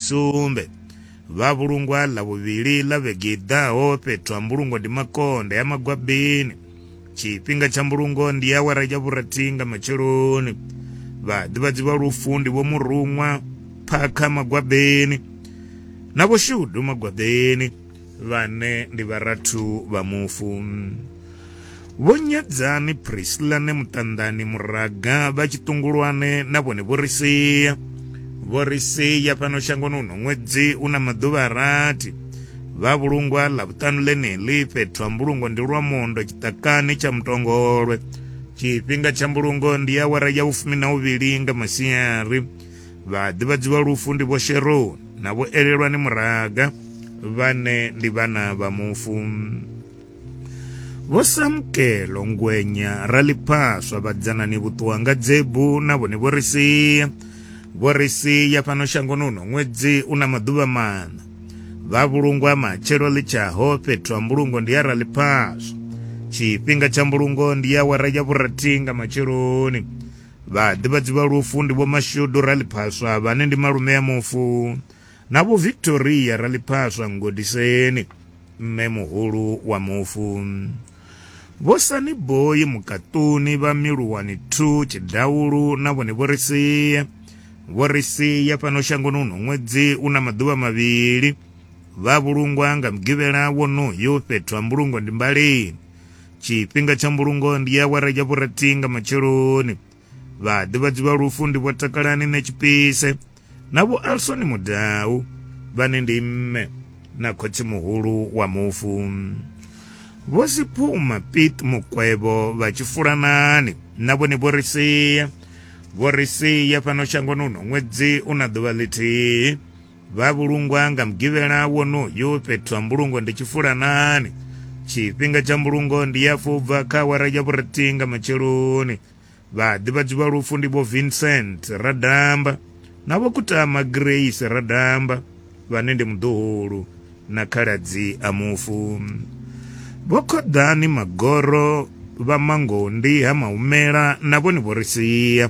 sumbe vha vhulungwa ḽa vhuvhili ḽa vhege i ḓaho fhethu ha mbulungo ndi makonde ya magwabini tshifhinga tsha mbulungo ndi awara ya vhurathi nga matsheloni vhaḓivhadzi vha lufu ndi vho muruṅwa phakha magwabini na vho shudu magwabini vhane ndi vharathu vha mufu Vho Nyadzani Priscilla ne Muṱanḓani Muraga vha Tshiṱungulwane na vhone vho ri sia vho ri sia fhano shangoni uno ṅwedzi u na maḓuvha a rathi vha vhulungwa ḽa vhuṱanu ḽeneḽi fhethu ha mbulungo ndi lwa mondo tshiṱakani tsha mutongolwe tshifhinga tsha mbulungo ndi awara ya vhufumi na uvhili nga masiari Vhaḓivhadzi vha lufu ndi vho Sheroni na vho Elelwani Muraga vhane ndi vhana vha mufu. Vho Samkelo Ngwenya Raliphaswa vhadzanani Vhuṱuwanga Dzebu na vhone vho ri sia. Vho ri sia fhano shangoni uno ṅwedzi u na maḓuvha maṋa. Vha vhulungwa matshelo ḽitshaho fhethu ha mbulungo ndi ya Raliphaswa. Tshifhinga tsha mbulungo ndi ya awara ya vhurathi nga matsheloni. Vhaḓivhadzi vha lufu ndi Vho Mashudu Raliphaswa vhane ndi malume a mufu na Vho Victoria Raliphaswa Ngodiseni mme muhulu wa mufu. Vho Sani Boyi Mukaṱuni vha Miluwani 2 Tshidaulu na vhone vho ri sia vho ri sia fhano shangoni uno ṅwedzi u na maḓuvha mavhili vha vhulungwa nga mugivhela wonoyo fhethu ha mbulungo ndi Mbalini tshifhinga tsha mbulungo ndi awara ya vhurathi nga matsheloni vhaḓivhadzi vha lufu ndi vho takalani ne tshipise na vho alsoni mudau vhane ndi mme na khotsi muhulu wa mufu vho siphuma pit mukwevho vha tshifulanani na vhone vho ri sia vho ri sia fhano shangoni uno ṅwedzi una ḓuvha ḽithihi Vha vhulungwa nga mugivhela wonoyu fhethu ha mbulungo ndi tshifulanani. Tshifhinga tsha mbulungo ndi ya afho ubva kha awara ya vhurathihi nga matsheloni. Vhaḓivhadzi vha lufu ndi vho Vincent Radamba na vho Kutama Grace Radamba vhane ndi muḓuhulu na khaladzi a mufu. Vho Khoḓani Magoro vha Mangondi ha Mahumela na vhone vho ri sia.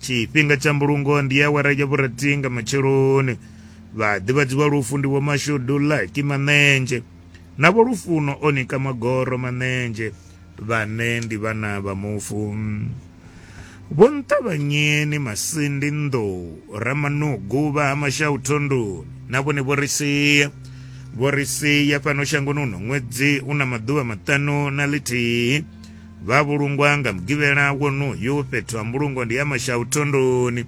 tshifhinga tsha mbulungo ndi awara ya vhurathi nga matsheloni vhaḓivhadzi vha lufu ndi vho mashudu laki maṋenzhe na vho lufuno o nika magoro maṋenzhe vhane ndi vhana vha mufu vho nṱavhanyeni masindi nḓou ramanugu vha ha mashau thondoni na vhone vho ri sia vho ri sia fhano shangoni uno ṅwedzi u na maḓuvha maṱanu na ḽithihi vha vhulungwa nga mugivhela wonoyu fhethu ha mbulungo ndi ya mashau thondoni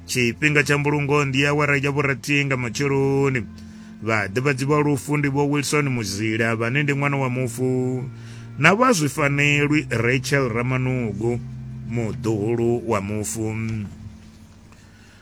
tshifhinga tsha mbulungo ndi awara ya vhurathi nga matsheloni vhaḓivhadzi vha lufu ndi vho wilson muzila vhane ndi ṅwana wa mufu na vha zwifanelwi rachel ramanugu muḓuhulu wa mufu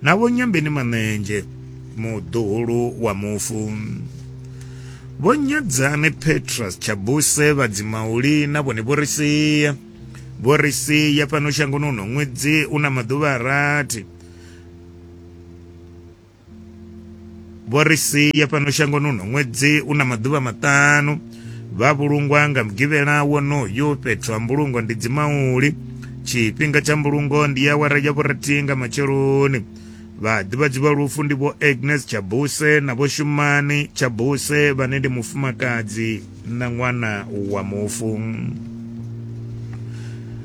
Na Vho Nyambeni Manenzhe, muḓuhulu wa mufu. Vho Nyadzani Petrus Tshabuse vha Dzimauli na vhone vho ri sia. Vho ri sia fhano shangoni uno ṅwedzi u na maḓuvha a rathi. Vho ri sia fhano shangoni uno ṅwedzi u na maḓuvha maṱanu vha vhulungwa nga mugivhela wonoyu fhethu ha mbulungo ndi dzimauli tshifhinga tsha mbulungo ndi ya awara ya vhurathihi nga matsheloni vhaḓivhadzi vha lufu ndi vho agnes tshabuse na vho shumani tshabuse vhane ndi mufumakadzi na ṅwana wa mufu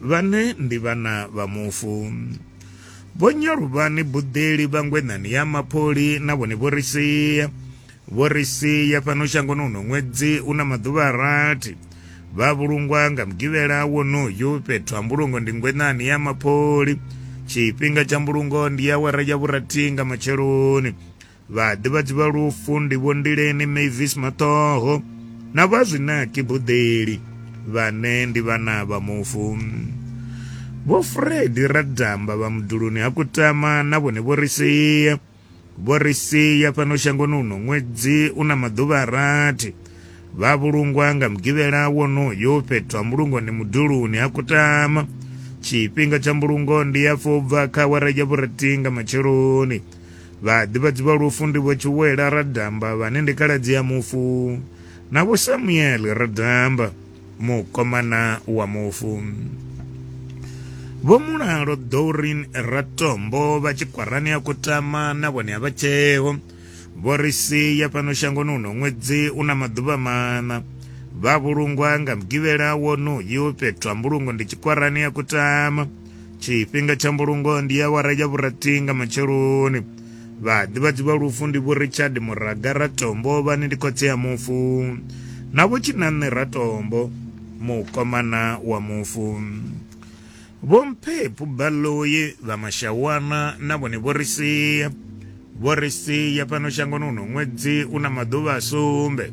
Vhane ndi vhana vha mufu. Vho Nyaluvhani Buḓeli vha Ngwenani ya Mapholi na vhone vho ri sia vho ri sia fhano shangoni uno ṅwedzi una maḓuvha a rathi vha vhulungwa nga mugivhela wonoyu fhethu ha mbulungo ndi Ngwenani ya Mapholi tshifhinga tsha mbulungo ndi awara ya vhurathi nga matsheloni Vhaḓivhadzi vha lufu ndi Vho Ndileni Mavis Maṱoho na vha Zwinaki Buḓeli vhane ndi vhana vha mufu. Vho Fred Radamba vha muduluni ha Kutama na vhone vho ri sia vho ri sia fhano shangoni uno ṅwedzi u na maḓuvha a rathi vha vhulungwa nga mugivhela wonoyo fhethu ha mbulungoni muduluni ha Kutama tshifhinga tsha mbulungo ndi ya fobva kha awara ya vhurathi nga matsheloni Vhaḓivhadzi vha lufu ndi Vho Tshiwela Radamba vhane ndi khaladzi ya mufu na Vho Samuel Radamba mukomana wa mufu. Vho Mulalo Dorin Ratombo vha Tshikwarani ya Kutama na vhone a vha tsheo. Vho ri sia fhano shangoni uno ṅwedzi u na maḓuvha maṋa. Vha vhulungwa nga mugivhela wonoyu fhethu ha mbulungo ndi Tshikwarani ya Kutama. tshifhinga tsha mbulungo ndi ya wara ya vhurathi nga matsheloni vhaḓivhadzi vha lufu ndi vho richard muraga ratombo vhane ndi khotsi ya mufu na vho tshinanṋe ratombo mukomana wa mufu vho mphephu baloyi vha mashawana na vhone vho ri sia vho ri sia fhano shangoni uno ṅwedzi u na maḓuvha a sumbe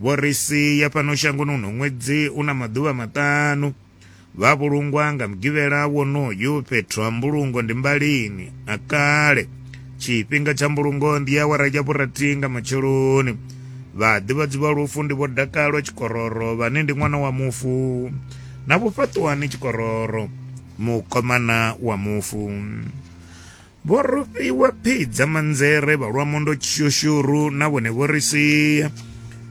Vho ri sia fhano shangoni uno ṅwedzi u na maḓuvha maṱanu. Vha vhulungwa nga mugivhela wonoyu fhethu ha mbulungo ndi mbalini a kale. Tshifhinga tsha mbulungo ndi awara ya vhurathi nga matsheloni. Vhaḓivhadzi vha lufu ndi vho Dakalo Tshikororo vhane ndi ṅwana wa mufu na vho Fhaṱuwani Tshikororo mukomana wa mufu. Vho rufhiwa phi dza manzere vha lwa mondo tshushuru na vhone vho ri sia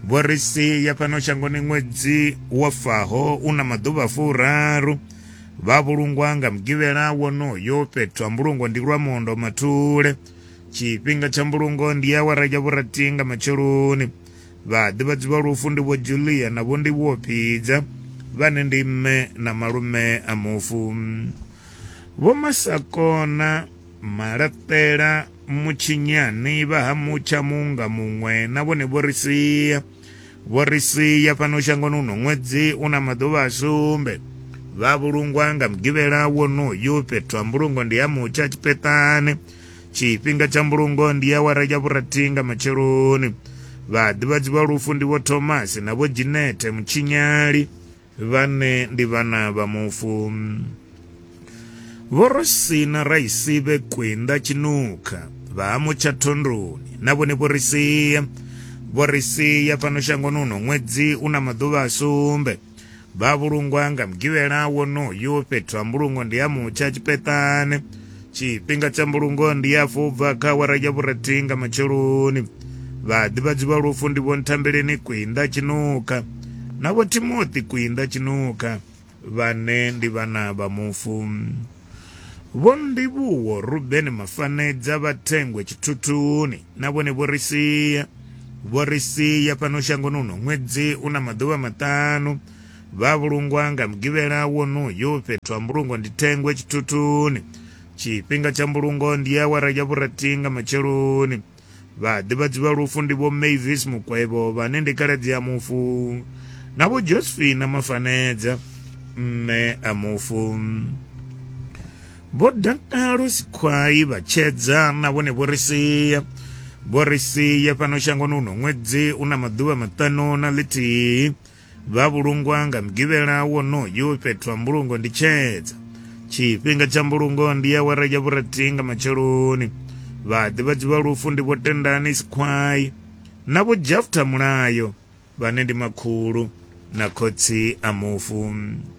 vho ri sia fhano shangoni ṅwedzi wa faho u na maḓuvha furaru vha vhulungwa nga mugivhela wonoyo fhethu ha mbulungo ndi lwa mondo mathule tshifhinga tsha mbulungo ndi awara ya vhurathi nga matsheloni vhaḓivhadzi vha lufu ndi vho julia na vho ndi vho phidza vhane ndi mme na malume a mufu Vho Masakona Malapela Mutshinyani vha ha Mutsha Muunga Muṅwe na vhone vho ri sia vho ri sia fhano shangoni uno ṅwedzi u na maḓuvha a sumbe vha vhulungwa nga mugivhela wonoyu fhethu ha mbulungo ndi ha Mutsha Tshipetane tshifhinga tsha mbulungo ndi ya wara ya vhurathi nga matsheloni vhaḓivhadzi vha lufu ndi vho Thomas na vho Jinete Mutshinyali Vhane ndi vhana vha mufu. Vho Rosina Raisibe Kwinda Tshinukha vha ha Mutsha Thondoni na vhone vho ri sia vho ri sia fhano shangoni uno ṅwedzi u na maḓuvha a sumbe vha vhulungwa nga mugivhela wonoyu fhethu ha mbulungo ndi ha Mutsha Tshipetane Tshifhinga tsha mbulungo ndi ya afho ubva kha awara ya vhurathi nga matsheloni. Vhaḓivhadzi vha lufu ndi vho Nthambeleni Kwinda Tshinukha na vho Timothy Kwinda Tshinukha vhane ndi vhana vha mufu. Vho Ndivhuwo Ruben Mafanedza vha thengwe tshithuthuni na vhone vho ri sia vho ri sia fhano shangoni uno ṅwedzi una maḓuvha maṱanu Vha vhulungwa nga Mugivhela wonoyu fhethu ha mbulungo ndi thengwe tshithuthuni. Tshifhinga tsha mbulungo ndi awara ya vhurathi nga matsheloni. Vhaḓivhadzi vha lufu ndi vho Mavis Mukwevho vhane ndi khaladzi a mufu na vho Josephine Mafanedza mme a mufu. Vho Dakalo Sikhwai vha tshedza na vhone vho ri sia vho ri sia fhano shangoni uno ṅwedzi u na maḓuvha maṱanu na ḽithihi Vha vhulungwa nga mugivhela wonoyu fhethu ha mbulungo ndi tshedza. Tshifhinga tsha mbulungo ndi awara ya vhurathi nga matsheloni. Vhaḓivhadzi vha lufu ndi vho Tendani Sikhwayi na vho Jafta Mulayo vhane ndi makhulu na khotsi a mufu.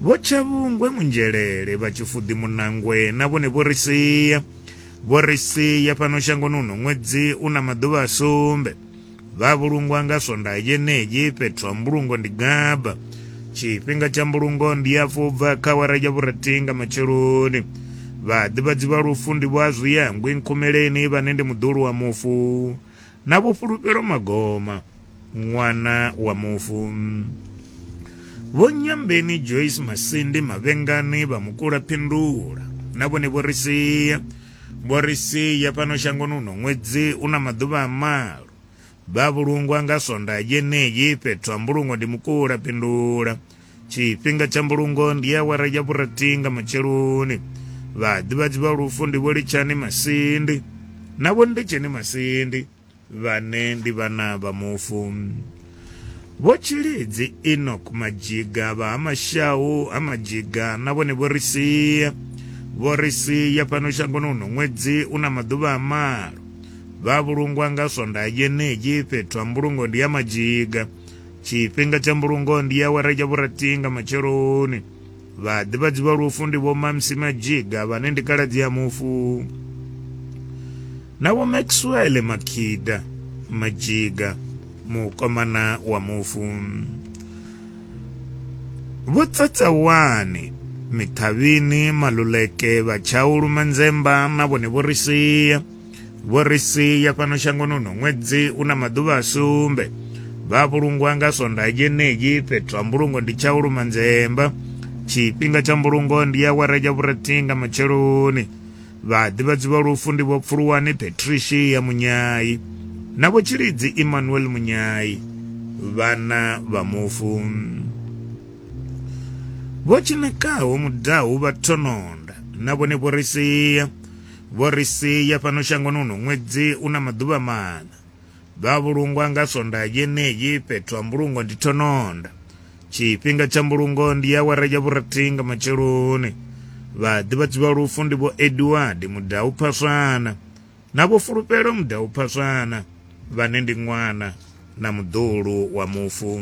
Vho Tshavhungwe Munzhelele vha Tshifuḓi Munangwe na vhone vho ri sia. Vho ri sia fhano shangoni uno ṅwedzi u na maḓuvha a sumbe. Vha vhulungwa nga Swondaha yenei fhethu ha mbulungo ndi Gaba. Tshifhinga tsha mbulungo ndi ya fubva kha awara ya vhurathi nga matsheloni. Vhaḓivhadzi vha lufu ndi vho Azwiyangwi Nkhumeleni vhane ndi muḓulu wa mufu. Na Vho Fhulufhelo Magoma, ṅwana wa mufu. Vho Nyambeni Joyce Masindi Mavhengani vha Mukula Phindula na vhone vho ri sia vho ri sia fhano shangoni uno ṅwedzi u na maḓuvha a malo vha vhulungwa nga sonda yeneyi fhethu ha mbulungo ndi Mukula Phindula tshifhinga tsha mbulungo ndi awara ya vhurathi nga matsheloni vhaḓivhadzi vha lufu ndi vho litshani masindi na vho ndetsheni masindi vhane ndi vhana vha mufu vho tshilidzi enok majiga vha ha mashau ha majiga na vhone vho ri sia vho ri sia fhano shangoni uno ṅwedzi u na maḓuvha a malo vha vhulungwa nga swondaha yeneyi fhethu ha mbulungo ndi ya majiga tshifhinga tsha mbulungo ndi awara ya vhurathi nga matsheloni vhaḓivhadzi vha lufu ndi vho mamsi majiga vhane ndi kaladzi ya mufu na vho maxwell makhida majiga mukomana wa mufu vho tsatsawane mithavhini maluleke vhatshaulu manzemba na vhone vho ri sia Vho ri sia fhano shangoni uno ṅwedzi u na maḓuvha a sumbe vha vhulungwa nga sondaha dzeneyi fhethu ha mbulungo ndi tsha u luma nzemba tshifhinga tsha mbulungo ndi ya wara ya vhurathihi nga matsheloni vhaḓivhadzi vha lufu ndi vho pfuluwani patricia munyayi na vho tshilidzi emmanuel munyayi vhana vha mufu vho tshinekaho mudahu vha thononda na vhone vho ri sia Vho ri sia fhano shangoni uno ṅwedzi u na maḓuvha maṋa. Vha vhulungwa nga Sondaha yeneyi, fhethu ha mbulungo ndi thononda. Tshifhinga tsha mbulungo ndi awara ya vhurathi nga matsheloni. Vhaḓivhadzi vha lufu ndi vho Edward Mudau Phaswana na vho Fulufhelo Mudau Phaswana vhane ndi ṅwana na muḓulu wa mufu.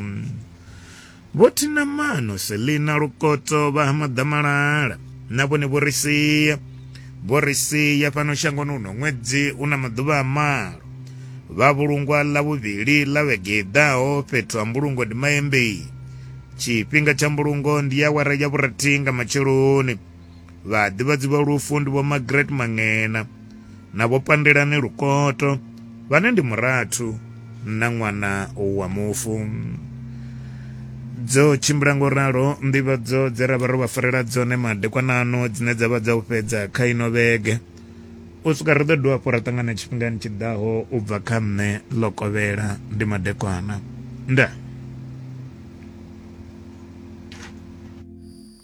Vho Thinamano, Selina Lukoto, vha ha Maḓamalala na vhone vho ri sia. Vho ri sia fhano shangoni uno ṅwedzi u na maḓuvha a malo. Vha vhulungwa ḽa vhuvhili ḽa vhege i ḓaho fhethu ha mbulungo ndi Maembei. Tshifhinga tsha mbulungo ndi awara ya vhurathi nga matsheloni. Vhaḓivhadzi vha lufu ndi vho Margaret Mangena na vho Pandelani Lukoto vhane ndi murathu na ṅwana wa mufu. Dzo tshimbila ngo ralo nḓivhadzo dze ra vha ro vha farela dzone madekwanano dzine dza vha dza u fhedza kha ino vhege u swika ri ḓo dovha hafhu ra ṱangana tshifhingani tshi ḓaho u bva kha nṋe ḽo kovhela ndi madekwana ndaa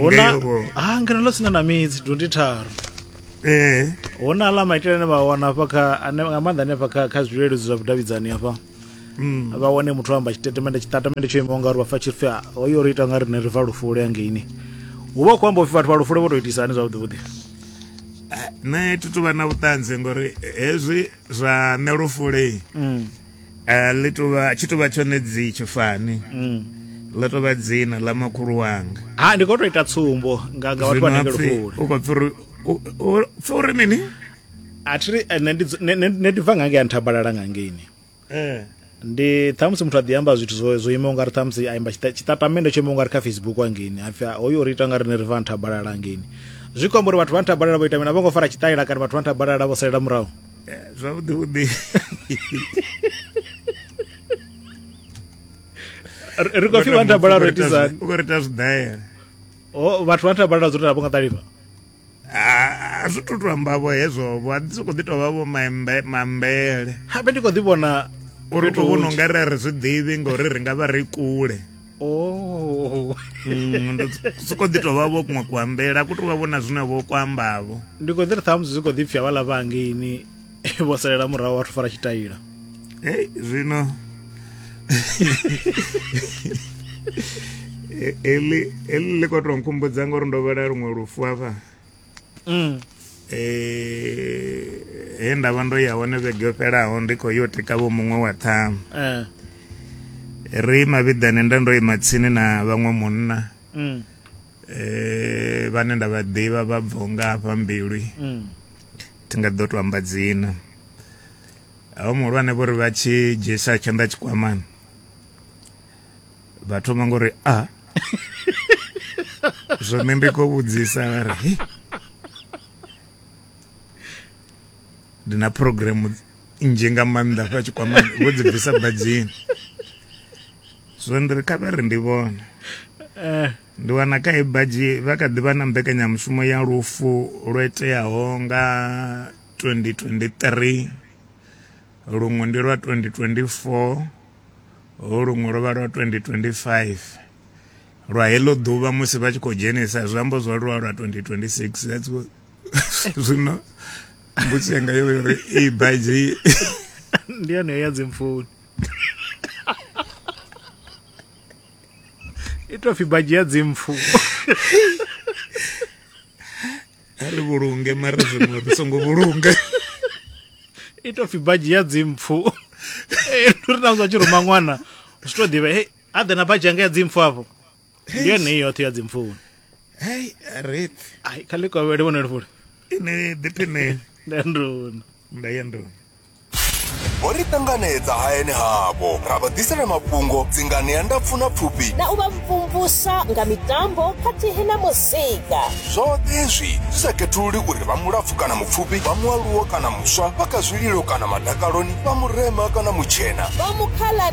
huna ha ngeno ḽo sina na midzi dundi tharu eh hu na ḽa maitele ane vha wana hafha kha ane nga maanḓa hanefha kha kha zwileludzi zwa vhudavhidzani hafha mm. vha wane muthu o amba tshitatamende tshitatamende tsho imaho ngauri vha fa tshirifhi hoyo ri ita nga rine ri fa lufule hangeini hu vha hu khou amba upfi vhathu vha lufule vho tou itisa hani zwavhuḓi vhuḓi nṋe thi tuvha na vhuṱanzi ngori hezwi zwa nṋe lufule mm. eh, ḽi tovha tshi tovha tshone dzi tshifani mm. ḽa tovha dzina ḽa makhulu wanga ha ndi khou tou ita tsumbo nga nga vhathu vha nenge lufule u khou pfi uri pfi uri mini a thi ri eh, nṋe ndi bva nga ngei a nthabalala nga ngeini eh. ndi ṱhamusi muthu a ḓi amba zwithu zwo zwo imaho nga ri ṱhamusi a imba tshiṱatamende tsho imaho nga ri kha facebook hangeni hapfi hoyu uri ita nga riṋe ri va nthabalala hangeni zwi khou amba uri vhathu vha nthabalala vho ita mini a vho ngo fara tshiṱalela kana vhathu vha nthabalala vho salela murahu eh, zwavhuḓi vhuḓi ri khou pfi vha nthabalala ro itisani u khou ri ita zwidaela vhathu vha nthabalala zwo ri a vho nga ṱalifha a zwi to to amba vho hezwo vho a ḓi sokou ḓi tou vha vho mambele habe ndi khou ḓi vhona uri to vhona unga ri a ri zwi ḓivhi ngauri ri nga vha ri kule oh. mm, soko ḓi tovha vho kuṅwe kuambela ku tovha vhona zwine vho kuambavho ndi kho ḓi ri ṱhamusi zwi kho ḓi pfhi havhaḽa vha hangeini vho salela murahu vhathu fara tshitaila hey zwino e, eli eli ḽi khou tou nkhumbudza ngori ndo vhela luṅwe lufu hafha mm. e, he nda vha ndo ya hone vhege yo fhelaho ndi khou yo tika vho muṅwe wa ṱhamu eh. ri mavhiḓani nda ndo ima tsini na vhaṅwe munna mm. Eh, vhane nda vha ḓivha vha bvo nga hafha mbilwi mm. thi nga ḓo to amba dzina aho muhulwane vho ri vha tshi dzhiisa tshanḓa tshikwamani vha thoma ngori a ah. zwone ndi khou vhudzisa vha ri ndi na programu nzhi nga maanḓa hafha tshikwamani vho dzi bvisa badzini zwino ndi ri kha vha ri ndi vhone eh. ndi wana kha i badzhi vha kha ḓi vha na mbekanyamushumo ya lufu lwo iteaho nga 2023 luṅwe ndi lwa 2024 luṅwe lwo vha lwa 2025 lwa heḽo ḓuvha musi vha tshi khou dzhenisa zwiambo zwo lwa lwa 2026 that's zwino mbudzi yanga yo uri i baidzi ndi yone ya dzimfuni i tou pfi badzhi ya dzimpfu a ri vhulunge mara zwiṅwe ri songo vhulunga i tou pfi badzhi ya dzimpfu ri na muthu a tshi ruma ṅwana zwi tou ḓivha he a ḓe na badzhi yanga ya dzimpfu afho ndi yone i yoṱhe ya dzimpfuni hei ret ai kha ḽikovhele vhone lifule ine ḓipine nda nduna nda ya nduna vho ri ṱanganedza hayani havho ra vha ḓisela mafhungo dzingani ya ndapfu na pfufhi na u vha mvumvusa nga mitambo khathihi na muzika zwoṱhe hezwi zwi sa khethululi uri vha mulapfu kana mupfufhi vha mualuwo kana muswa vha kha zwililo kana madakaloni vha murema kana mutshena vha mukhala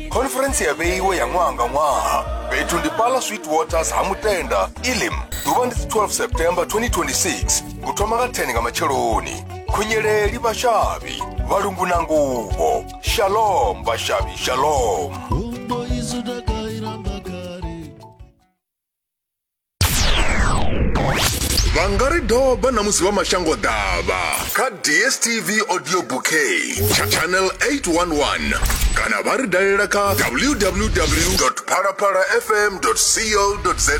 khoniferentsi ya vheiwe ya ṅwaha nga ṅwaha fhethu ndi pala sweet waters ha mutenda ilim ḓuvha ndi 12 september 2026 u thoma nga 10 nga matsheloni khunyeleli vhashavhi vhalungu na nguvho shalom vhashavhi shalom vha nga ri doba na musi vha mashango ḓavha kha dstv audio bouquet tsha channel 811 kana vha ri dalela kha www phalaphalafm co za